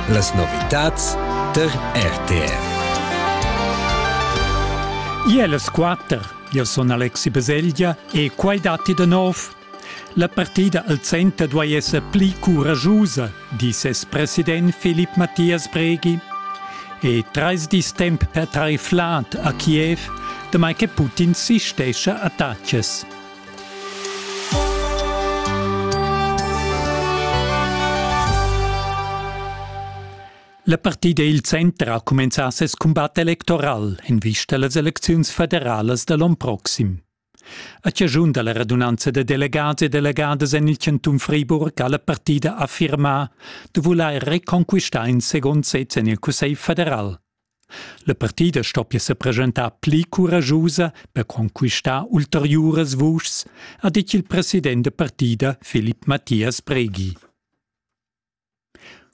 Las novitads tar RTR. Ier las quatter. Io sun Alexi Baselgia e quai datti da nov. La partida al center duai esser pli curagiusa, di ses president Philipp Matthias Breghi. E trais dis temp per tar flad a Kiev, damai che Putin sistescha attacas. La partida il center ha cumenzà ses cumbat electoral en vista a las elecziuns federalas da l'onn proxim. A chaschun da la radunanza da delegads e delegadas en il chantun Friburg ha la partida affirmà da vulair reconquistar in segund sez en il Cussegl federal. La partida stoppia sa presentar pli curaschusa per conquistar ulteriuras vuschs, ha ditg il president da partida Filip Mathias Breghi.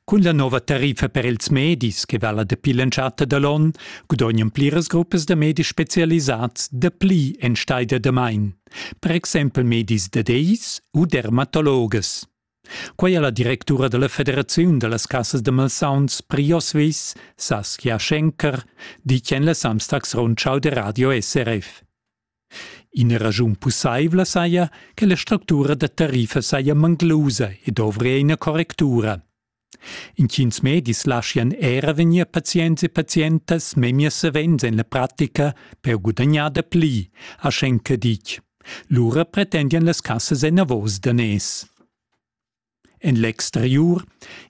Cun la nova tariffa per ils medis che vala dapi l'entschatta da l'onn gudognan pliras gruppas da medis spezialisads dapli enstagl da damain, per exempel medis da dis u dermatologas. Quei ha la directura dalla federaziun dallas cassas da malsauns Priosvis, Saskia Schenker, ditg en la Samstags Rundschau de Radio SRF. Ina raschun pusseivla saja, che la structura da tariffa saja manglusa e dovria ina correctura. Intgins medis laschian era vegnir pazients e pazientas memia savens en la pratica per gudagnar da pli, ha Schenker ditg. Lura pretendian las cassas enavos daners. En l'exteriur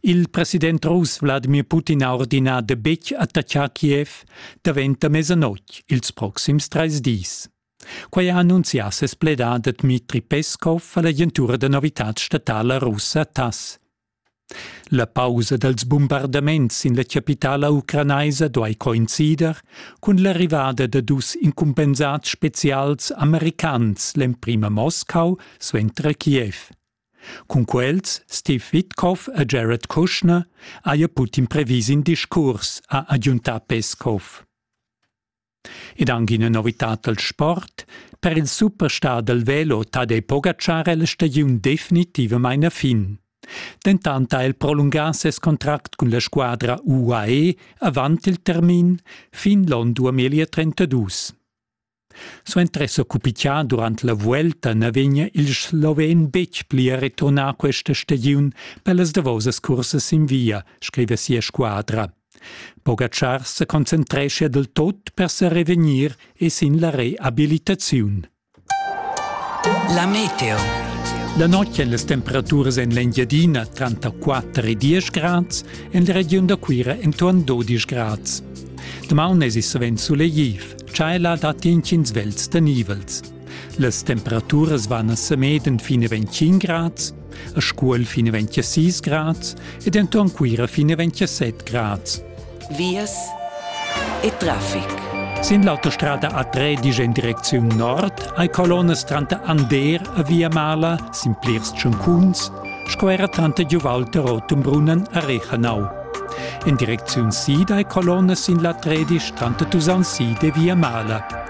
il president russ Wladimir Putin ha ordinà da betg attaccar Kiev daventa mesanotg ils proxims trais dis. Quai ha annunzià ses pledà da Dmitri Peskov a l'agentura da novitads statala russa TASS. La pausa dals bumbardaments sin la chapitala ucranaisa duai coincider cun l'arrivada da dus incumbensads spezials americans l'emprima Moskau suenter Kiev. Cun quels Steve Witkoff e Jared Kushner haja Putin previs in discurs, ha agiuntà Peskov. Ed anc ina novitad dal sport. Per il superstar dal velo ta dai Pogacar la stagiun definitivamain a fin. Dentant ha el prolungà ses contract cun la squadra UAE avant il termin fin l'onn 2032. Suenter s'occupità durant la vuelta na vegnia il sloven betg pli a returnar questa stagiun per las davosas cursas sin via, scriva sia squadra. Pogatschar se concentrescha del tot per se revegnir e sin la reabilitaziun. La meteo. La notg en las temperaturas en l'Engiadina tranter 4 e 10 grads, en la regiun da Cuira entorn 12 grads. Damaun es i sovent sulegliv, tschaiva datti intgins vels da nivels. Las temperaturas van a Semeden fin a 25 grads, a Scuol fin a 26 grads ed enton Cuira fin a 27 grads. Vias e traffic. Sin l'autostrada A3 disch en direcziun nord hai colonnas tranter Ander a Via Mala sin plirs tschuncuns sco era tranter Giuvalter Rotumbrunnen a Rechanau. En direcziun sid hai colonnas sin la 13 tranter Tusaun sid e Via Mala.